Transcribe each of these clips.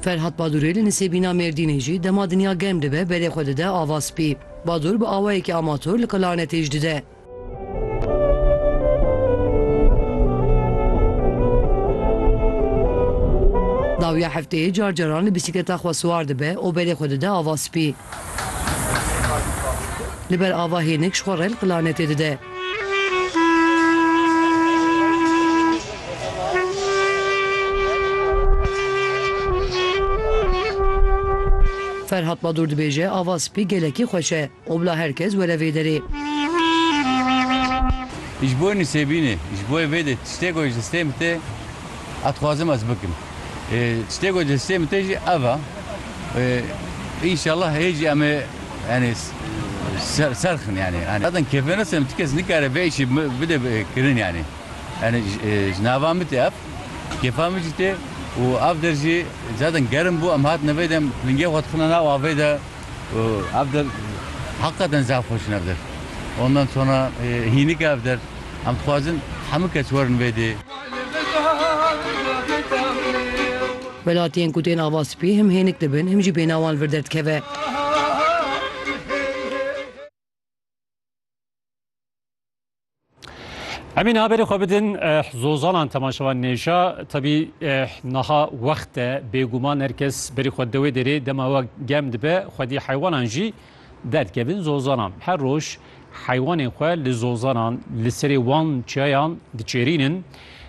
Ferhat Badûrê li Nisêbîna Mêrdînê jî dema dinya germ dibe berê xwe dide ava spî. Badûr bi awayekî amatûr li Klarnetê jî dide. Dawiya hefteyê car caran li bîsîkleta xwe siwar dibe û berê xwe dide ava spî. Li ber ava hênik ji xwe re li planetê dide. Ferhat Badur dibêje ava spî gelekî xweş e û bila her kes were vê derê. Ji bo nûsêbînê, ji bo vê de tiştê ku ji stê min tê Ev dixwazim ez bikim. Tiştê ku li destê min tê jî ev e. Înşallah hê jî em ê yanî ser xin yanî. Zaten kêfê nas em ti kes nikare vê îşê bide kirin yanî. Yanî ji nava min tê ev. Kêfa min jî tê û ev der jî zaten gerim bû em hatine vê de em pingê xwe dixine nav avê de û ev der heqaten zaf xweş in ev der. Ondan sonra hînik e ev der. Em dixwazin hemû kes werin vê dê. Welatiyên ku tên ava spî him hênik dibin him jî bêhna wan li vir derdikeve. Emîne haberê xwe bidin eh, zozanan temaşevan nêşa tebî eh, naha wext e bêguman her kes berî xwe dewê derê dema we gem dibe xwedî heywanan jî Derdkevin zozanan her roj heywanên xwe li zozanan li serê wan çiyayan diçêrînin.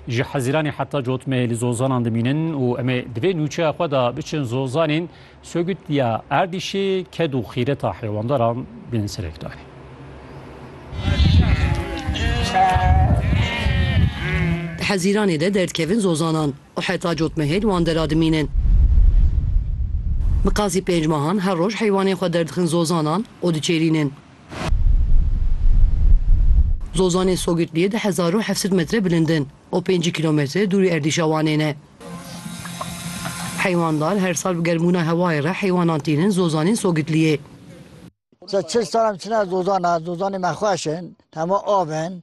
Ji Heziranê heta cot me li zozanan dimînin û em ê di vê nûçeya xwe de biçin zozanên Sögüt ya Erdîşê ked û xîreta heywandaran bên serekdarî. Di Heziranê de derdkevin zozanan. û heta cotmehêl wan dera dimînin. Bi qasî pênc mehan her roj heywanên xwe derdixin zozanan û diçêrînin. Zozanên Sogirtliyê di hezar û heft sed metre bilind in û pêncî kîlometre dûrî erdîşa Wanê ne. Heywanddar her sal bi germbûna hewayê re heywanan tînin zozanên Sogirtliyê. Çil sal em çine zozana, zozanê me xweş in, hema av in,